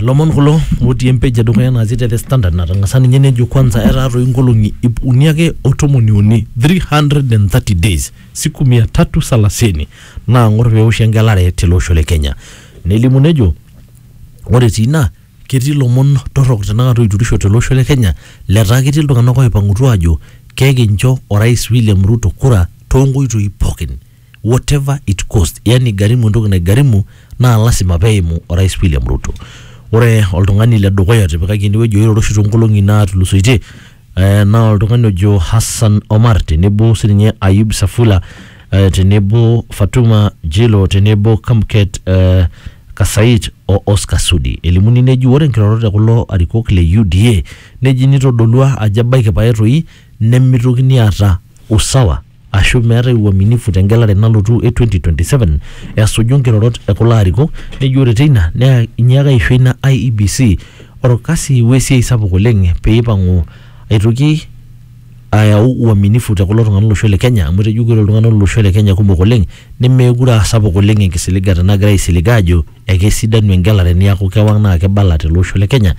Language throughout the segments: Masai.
Lomon kulo otii empej edukuya natii te The Standard natang'asa ninye nejo kwanza etaa toi nkolong'i ip uni ake o tomoni uni 330 days siku mia tatu salasini naang'or peoshi engelare tele osho le Kenya. Nelimu nejo ore etii ina ketii lomon torrok tenakata oiturisho tele osho le Kenya letaa ketii iltung'anak oipang'utua aajo kekincho orais William Ruto kura too nkoitoi pookin. whatever it cost yani igarimu entoki naigarimu naa lasima peimu orais William Ruto ore oltung'ani le dukuya otipikaki enewueji oiroro oshi toonkolong'i naatulusoitie eh, naa oltung'ani ojo Hassan Omar tenebo sininye Ayub Safula eh, tenebo Fatuma Jilo tenebo Kamket eh, Kasait o Oscar Sudi elimuni neji ore nkirorot e kulo arikok le UDA neji nitodolua ajo ebaiki pae toi nemitokini aata usawa ashu meetae uaminifu te ngelare nalotu e 2027 esuju nkirorot e kulo arikok nejo ore teina naa inyiaka aisho ina IEBC orkasi we siai sapuk oleng pee ipang'u aitoki ayau uaminifu te kulo tung'anak lolosho le Kenya amu etejo ore iltung'anak lolosho le Kenya kumok oleng nemeekure aa sapuk oleng enkisiligata nagira aisilig aajo ekesidanu engelare niaku kewang naa kibala tele osho le Kenya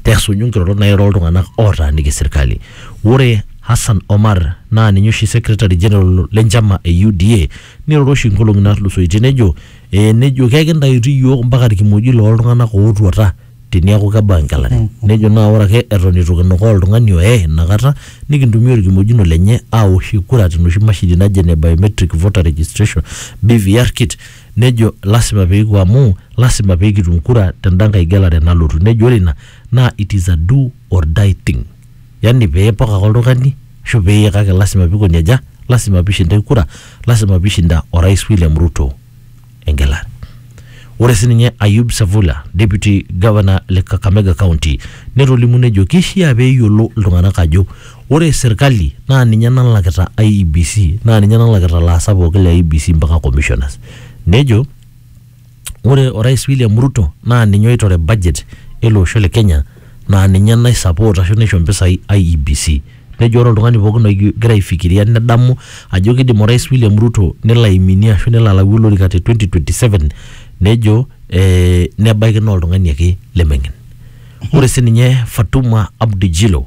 tesuju nkirorot nairo iltung'anak ootaaniki serkali. Ore Hassan Omar naa ninye oshi secretary general le nchama e UDA neiroro oshi nkolong'i naatulusoitie nejo eh, nejo kekintayutu iyiook mpaka ilkimojik loo ltung'anak ootuata teniaku kebau engelare. Nejo naa ore ake eton eitu kinukaa oltung'ani oye ina kata nikintumia olkimojino lenye aawoshie kura te noshi mashini naji ene biometric voter registration, BVR kit, nejo lasima pee kipuo amu lasima pee kitum kura tenda nkae gelare nalotu. Nejo ore ina naa it is a do or die thing. yani peepok ake oltung'ani ashu peye kake lasima pikoni aja lasima pishinda kura lasima pishinda orais William Ruto engelare ore sininye Ayub Savula deputy governor le Kakamega county netolimu nejo kishia peyiolo iltung'anak ajo ore serkali naa ninye nalakita IEBC naa ninye nalakita ilaasak pookin le IEBC mpaka commissioners nejo ore orais William Ruto naa ninye oitore budget ele osho le Kenya naa ninye nai support ashu naisho mpisai IEBC. Nejo ore oltung'ani pookin ogira aifikiria nedamu ajo kiidim orais William Ruto nelo aiminie ashu nelo alayu olorika te 2027 nejo ee nebaiki naa oltung'ani ake lemeng'en. Ore sininye Fatuma Abdi Jilo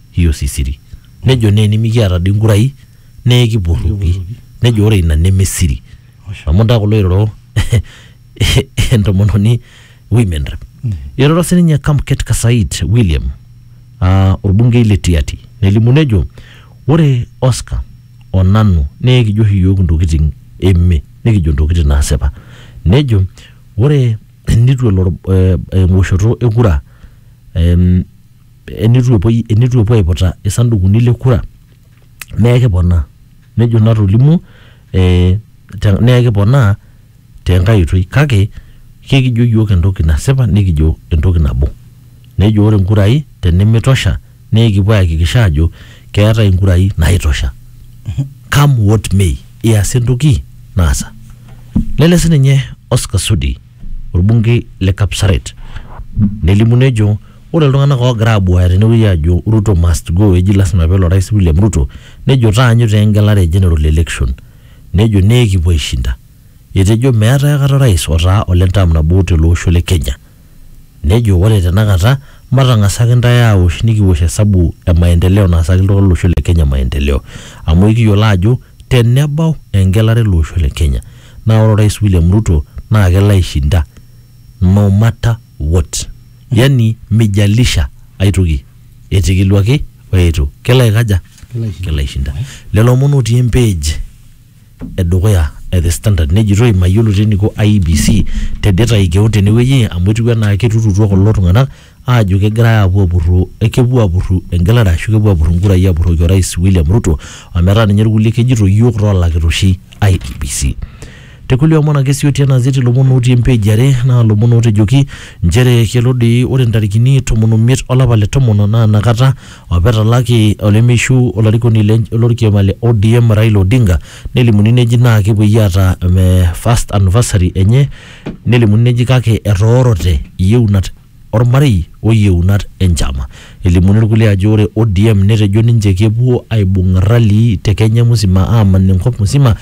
hiyo si siri nejo naa enimikiata dii nkurai nee kipurruki nejo ore ina neme siri amu ntaa kulo iroro entomononi women rep iroro sininye Kamket Kasait William aa orbungei le Tiaty nelimu nejo ore Oscar o nanu naa ekijo oshi iyiook intokitin eme nikijo intokitin naasipa nejo ore enitu elo or- eh, ewoshoto e kura em, enitu epuoi enitu epuo aiputa isandukuni le kura naa ekiponaa nejo natolimuo eh, te- naa ekiponaa tenkae oitoi kake kekijo yiok entoki nasipa nikijo entoki nabo nejo ore inkurai tenimitosha naa ekipuo ayakikisha ajo keetae inkurai naitosha come what may iasa entoki naasa nele sininye Oscar Sudi orbungei le Kapsaret nelimu nejo Ore iltung'anak oogira abuaya tenewueji aajo Ruto must go eji lasima peelo orais William Ruto nejo taanyu taa engelare e general election nejo naa ekipuo aishinda. Etejo meetae akata orais otaa ole term nabo tele osho le Kenya. Nejo ore tenakata matang'asa ake intae aosh nikiwosh esabu e maendeleo naasaki iltung'anak lo losho le Kenya maendeleo. Amu ekiyiolo aajo tenebau engelare ele osho le Kenya naa ore orais William Ruto naa kelo aishinda no matter what. yani mijalisha aitoki etikiluaki o eitu kelo aikaja Kelo aishinda. kelo aishinda lelo omon otii empage edukuya e the standard nejitoi mayiolo teniko IBC tedetai keon tenewueji amu etiu enaa keturutua kulo tung'anak aajo kegirai aapuo apurru eh, kepuo apurru engelare ashu kepuo apurru inkurai apurroki orais William Ruto ometaa ninye irkulie kejito iyiook toolakita oshi IBC Te kulie omon ake sii otii ena gazeti lomon otii empeji are naa lomon ootejoki nchere kelo doi ore ntarikini tomon omiet olapa le tomon naa inakata apa etalaki olemeishu olarikoni le lorkioma le ODM Raila Odinga nelimuni neji naa kepuoi aata eh, first anniversary enye nelimuni neji kake etoorote iyeunat ormarei o yieunat e nchama. Elimuni irkulie ajo ore ODM netejo ninche kepuo aibung ralii te Kenya musima aaman enkop musima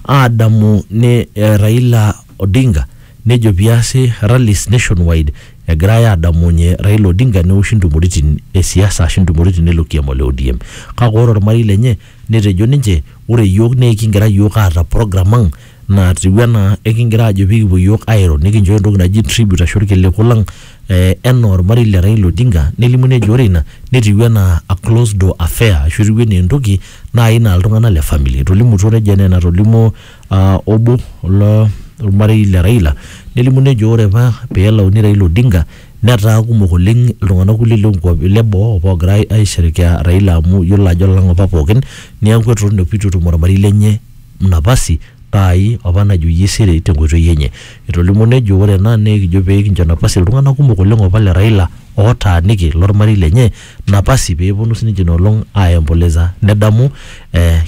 aadamu ne Raila Odinga nejo piasi rallies nationwide egirai aadamunye Raila Odinga neoshi ntumoritin e siasa ashu ntumoritin eilo kiama le ODM. Kake ore ormarei lenye Netejo ninche, Ore iyiook naa ekigira iyiook aata program ang natiu enaa ekigira aajo pee kipuo iyiook airo nikinchooyo entoki naji tribute ashu irkiliku lang eh enaa ormarei le Raila Odinga nelimu nejo ore ina netiu enaa a closed door affair ashu etiu enaa entoki naai naa iltung'anak le family. Etolimutuo nejo enaa enatolimuo aa obo lo lormarei le Raila nelimu nejo ore apa peelauni Raila Odinga Netaa kumok oleng iltung'anak kulie loo nkuapi le boo opa oogira ai aisherekea Raila amu iyiolo ajo lang opa pookin neeku eton opa itu etum ormarei lenye napasi aai opa najoyie siri te nkoitoi enye. Etolimuo nejo ore ena naa ekijo pee kinjo napasi iltung'anak kumok oleng opa le Raila ootaaniki lormarei lenye napasi peeponu sininje ina olong aiomboleza nedamu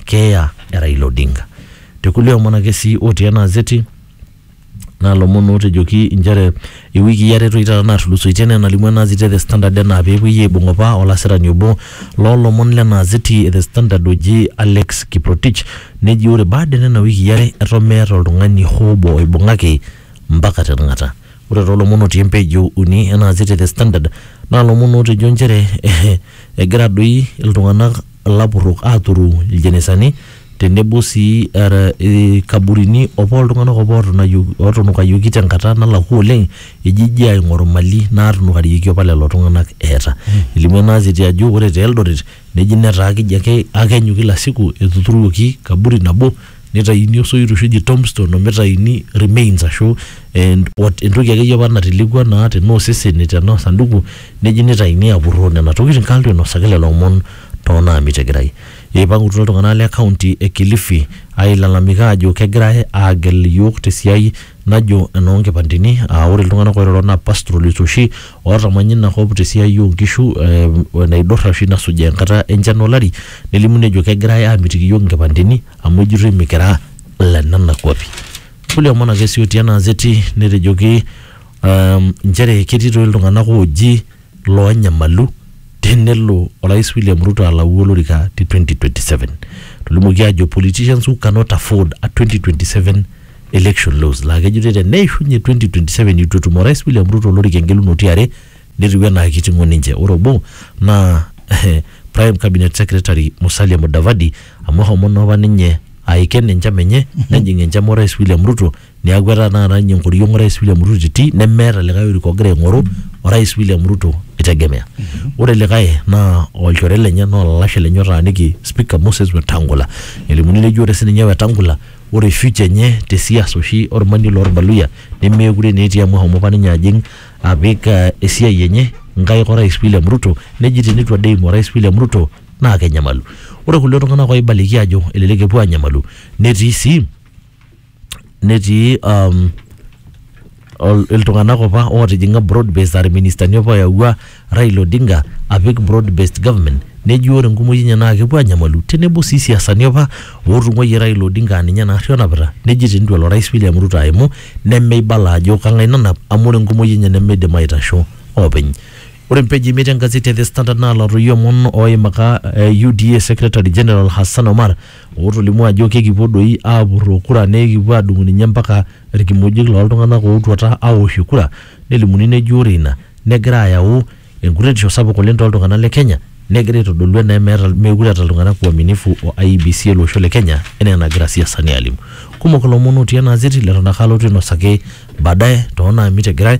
keeya e Raila Odinga. Te kulie omon ake sii otii ena gazeti, naa lomon ootejoki inchere iwikii are toi taata naatulusoitie enaa enalimu ena azeti e The Standard enaa peepuoi aibung opa olasirani obo loo lomon lena azeti e The Standard oji Alex Kiprotich neji ore baada e nena wikii are eton meeta oltung'ani hoo obo oibung'aki mpaka tenakata. Ore too lomon otii empage e uni ena azeti e The Standard naa lomon ootejo inchere egira doi iltung'anak ilapurrok aaturu iljenesani tenebo sii era ilkaburini opa oltung'anak opa ootunayu- ootunukayioki tenkata nalakua oleng ejiji aing'oru mali naatunukarieki opa lelo tung'anak eeta elimu ena azeti ajo ore te Eldoret neji netaa keji ake akenyu kila siku etuturuoki kaburi nabo neitaini osoit oshi oji tombstone omitayuni remains ashu eh what entoki akeyie opa natelekua naa tenaa osesen tenaa osanduku neji neitaini apurroo nena tokitin kalo inosaki lelo omon tonaamitegirai. Eipangutua iltung'ana le kaunti e Kilifi ailalamika aajo kegirai aagel iyiook te siai najo enoo nkipandeni aa ore iltung'ana oiroro naa pastoralists oshi ootamanya ina kop te siai oo nkishu o enaidurra oshi nasujaa enkata e nchan o lari nelimu nejo kegirai aamitiki iyiook nkipandeni amu ejitoi mikira ile nena kuapi. Kulie omon ake sii otii ena azeti netejoki nchere ketii toi iltung'ana ooji loonyamalu tenelo orais William Ruto alau olorika te 2027. Tolimuoki ajo politicians who cannot afford a 2027 election loss laa kejoitoi teneishunye 2027 eitu etum orais William Ruto olorika engelunoto e are netiu enaa keiting'o ninche. Ore obo naa prime cabinet secretary Musalia Mudavadi amu eshomo naa apa ninye aiken enchama enye nejing enchama orais William Ruto Neeku etaa taata ninye enkoriong orais William Ruto titii nemeeta likae orika ogira aing'oru orais William Ruto eitegemea. Ore likae naa olchore lenye naa olalashe lenye otaaniki speaker Moses Wetangula. Elimuni neji ore sininye Wetangula ore future enye te siasa oshi olmanie lorbaluyia nemeekure naa etii amu eshomo apa ninye ajing apik eh esiai enye nkaik orais William Ruto neji teneitu ade eimu orais William Ruto naa kenyamalu. Ore kulie tung'anak oibaliki aajo elelek epuo aanyamalu netii sii netii um, ol- iltung'anak opa ootijing'a broad based aa irministani opa oyawua Raila Odinga apik broad based government neji ore enkumoi enye naa kepuo anyamalu tenebo sii siasani opa ootung'uayie Raila Odinga aa ninye naarri onapita neji tenitu elo orais William Ruto aimu nemeibala ajo kang'ae nanap amu ore enkumoi enye nemeidim aitasho oopeny. Ore mpeji imiet engazeti e The Standard naalotoyio omon ooimaka eh, UDA secretary general Hassan Omar ootolimuo ajo kekipuo doi aapurroo kura nekipuo aadung'u ninye mpaka ilkimojik looltung'anak ootuata aoshie kura nelimuni neji ore ina negira ayau enkuretisho sapuk oleng tooltung'anak le Kenya negira aitodolu enaa meeta meekure eeta iltung'anak uaminifu o IEBC ele osho le Kenya enaa enagira isiasani aalimu. Kumok ilomon otii ena gazeti leton ake alotu ainosaki baadaye toonaamit egirai